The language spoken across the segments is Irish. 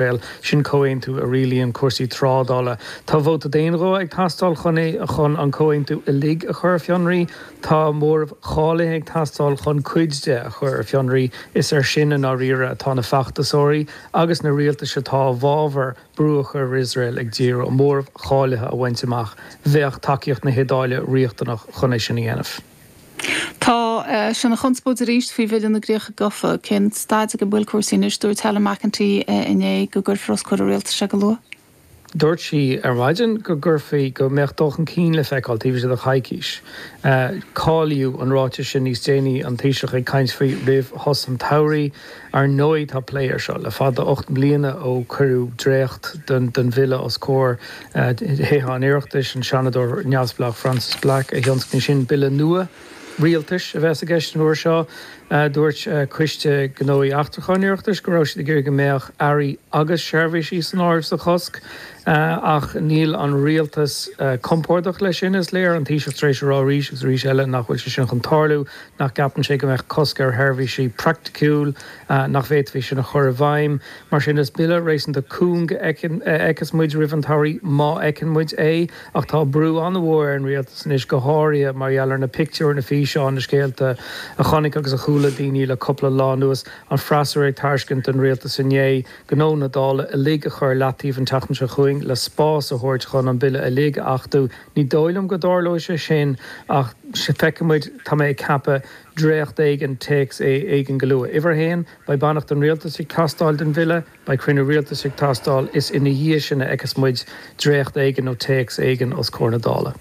Bhuel, sin comhaontú a rialaíonn cúrsaí trádála. Tá vóta d'aonghuth ag teastáil chun é, chun an comhaontú uilig a chur ar fionraí. Tá móramh cháilithe ag teastáil chun cuid de a chur ar fionraí. Is air sin, i ndáiríre, atá na feachtasóirí agus na rialtais atá i bhfabhar brú a chur ar Iosrael ag díriú, an móramh cháilithe a bhaint amach. Bheadh tacaíocht na hIodáile riachtanach chun é sin a dhéanamh. Tá sé ina chonspóid arís faoi Bhille na gCríocha Gofa. Cén staid ag a bhfuil cúrsaí anois? Dúirt Helen McEntee inné go gcuirfear os comhair an rialtais é go luath. Dúirt sí ar maidin go gcuirfí, go mbeadh dul chun cinn le feiceáil taobh istigh de choicís. Cáilíodh an ráiteas sin níos déanaí, an Taoiseach ag caint faoi roimh shos an tsamhraidh. Ar ndóigh tá plé air seo le fada, ocht mbliana ó cuireadh dréacht den bhille os comhair Thithe an Oireachtais, an Seanadóir neamhspleách Frances Black a thionscnaigh sin. Bille nua rialtais a bheas i gceist an uair seo. Dúirt Coiste Gnóthaí Eachtracha an Oireachtais go raibh siad ag iarraidh go mbeadh earraí agus seirbhísí san áireamh sa chosc ach níl an rialtas compordach leis sin, is léir. An Taoiseach tar éis a rá arís agus arís eile nach bhfuil sé sin chun tarlú. nach gceapann sé go mbeadh cosc ar sheirbhísí praiticiúil nach bhféadfaí sin a chur i bhfeidhm. Mar sin, is Bille réasúnta cúng a fheicfeas muid roimh an tsamhraidh, má fheiceann muid é, ach tá brú an-mhór ar an Rialtas anois, go háirithe mar gheall ar na pictiúir, na físeáin, na scéalta a chonaic agus a chuala daoine le cupla lá anuas, an freasúra ag tairiscint don Rialtas inné gnó na Dála uilig a chur i leataobh an tseachtain seo chugainn le spás a thabhairt chun an Bille uilig a achtú. Ní dóigh liom go dtarlóidh sé sin ach feicfidh muid, tá mé ag ceapadh, dréacht éigin, téacs éigin go luath. Uimhir a haon, beidh beannacht an Rialtais ag teastáil den Bhille, beidh cruinniú Rialtais ag teastáil, is ina dhiaidh sin a fheicfeas muid dréacht éigin nó téacs éigin os comhair na Dála.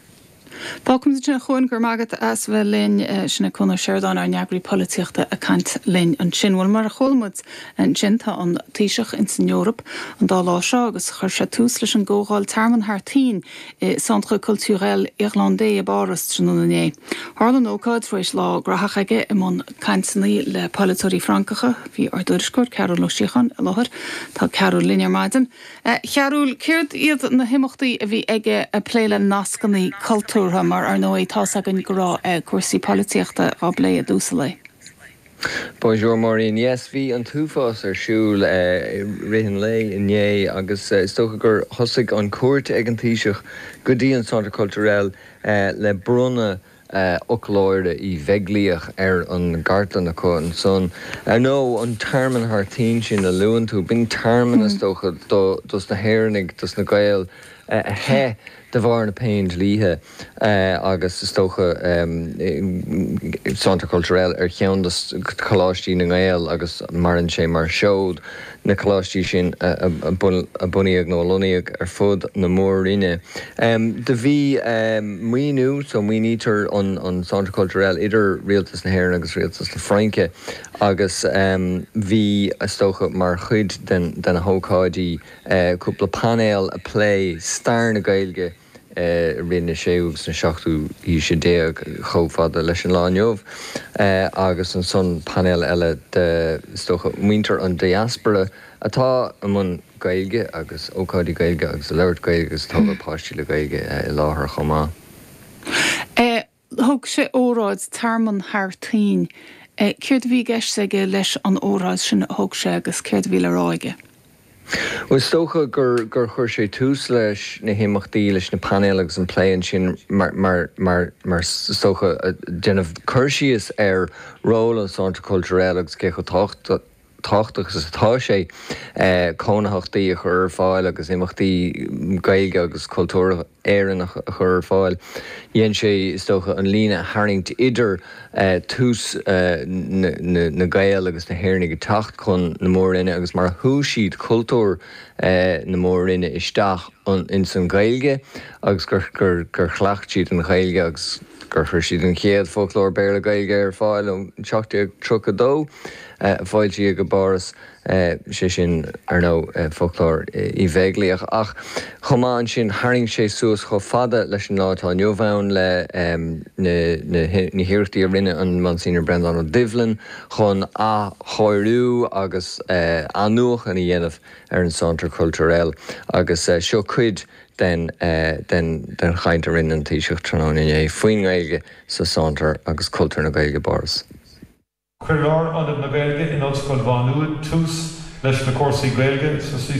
Fágfaimid ansin, a Chuain. Go raibh maith agat as bheith linn. Sin é Cuan Ó Seireadáin, ár n-eagraí polaitíochta ag caint linn ansin. Bhuel, mar a chuala muid ansin, tá an Taoiseach ins an Eoraip an dá lá seo agus chuir sé tús leis an gComhdháil Tearmann thar toinn, i Centre Culturel Irlandais i bPáras tráthnóna inné. Tharla an ócáid tar éis lá graitheach aige i mbun cainteanna le polaiteoirí Francacha. Bhí ár dtuairisceoir, Cearbhall Ó Síocháin, i láthair. Tá Cearbhall linn ar maidin. A Chearbhaill, céard iad na himeachtaí a bhí aige ag plé le nascanna cultúrtha, mar ar ndóigh tá's againn go raibh cúrsaí polaitíochta á bplé i dtús an lae? Bonjour Máirín. Yes, bhí an t-uafás ar siúl i rith an lae inné agus is dócha gur thosaigh an cuairt ag an Taoiseach go dtí an Centre Culturel le bronnadh Fhoclóir Uí Bheaglaoich ar an gcartlann acu ansan. Ar ndóigh, an Tearmann thar toinn sin a luann tú, b'in tearmann, is dócha, dos na hÉireannaigh, dos na Gaeil a theith, de bharr na Péindlíthe agus is dócha Centre Culturel ar cheann de Choláistí na nGael agus maireann sé mar sheod, na Coláistí sin a bunaíodh nó a lonnaíodh ar fud na Mór-roinne. Do bhí maoiniú, so maoinítear an Centre Culturel idir Rialtas na hÉireann agus Rialtas na Fraince agus bhí, is dócha mar chuid de na hócáidí, cúpla painéal ag plé stair na Gaeilge i rith na séú agus na seachtú haoise déag chomh fada leis an lá inniu agus ansan painéal eile de, is dócha, muintir an diaspóra atá i mbun Gaeilge agus ócáidí Gaeilge agus ag labhairt Gaeilge agus ag tógáil páistí le Gaeilge i láthair chomh maith. Thug sé óráid, tearmann thar toinn. Céard a bhí i gceist aige leis an óráid sin a thug sé agus céard a bhí le rá aige? Bhuel, is dócha gur chuir sé tús leis na himeachtaí, leis na painéil agus an plé ansin mar is dócha, ag déanamh cur síos ar ról an Centre Culturel agus cé chomh tábhachtach, tábhachtach is atá sé cónaitheachtaí a chur ar fáil agus imeachtaí Gaeilge agus cultúr Éireannach a chur ar fáil. Dhein sé, is dócha, an líne a tharraingt idir tús na nGael agus na hÉireannaigh ag teacht chun na Mór-Roinne agus mar a shúigh siad cultúr na Mór-Roinne isteach ins an Ghaeilge agus gur chleacht siad an Ghaeilge agus gur chuir siad an chéad Foclóir Béarla-Gaeilge ar fáil in 1732. a foilsíodh i bPáras, sé sin, ar ndóigh, foclóir Uí Bheaglaoich, ach chomh maith ansin, tharraing sé suas chomh fada leis an lá atá inniu ann le na hiarrachtaí a rinne an Monsignor Breandán Ó Doibhlin chun athchóiriú agus athnuachan a dhéanamh ar an Centre Culturel agus seo cuid den chaint a rinne an Taoiseach tráthnóna inné faoin nGaeilge sa Centre agus cultúr na Gaeilge i bPáras. Chuir Lárionad na Gaeilge in Ollscoil Mhá Nuad tús leis na cúrsaí Gaeilge sa CCI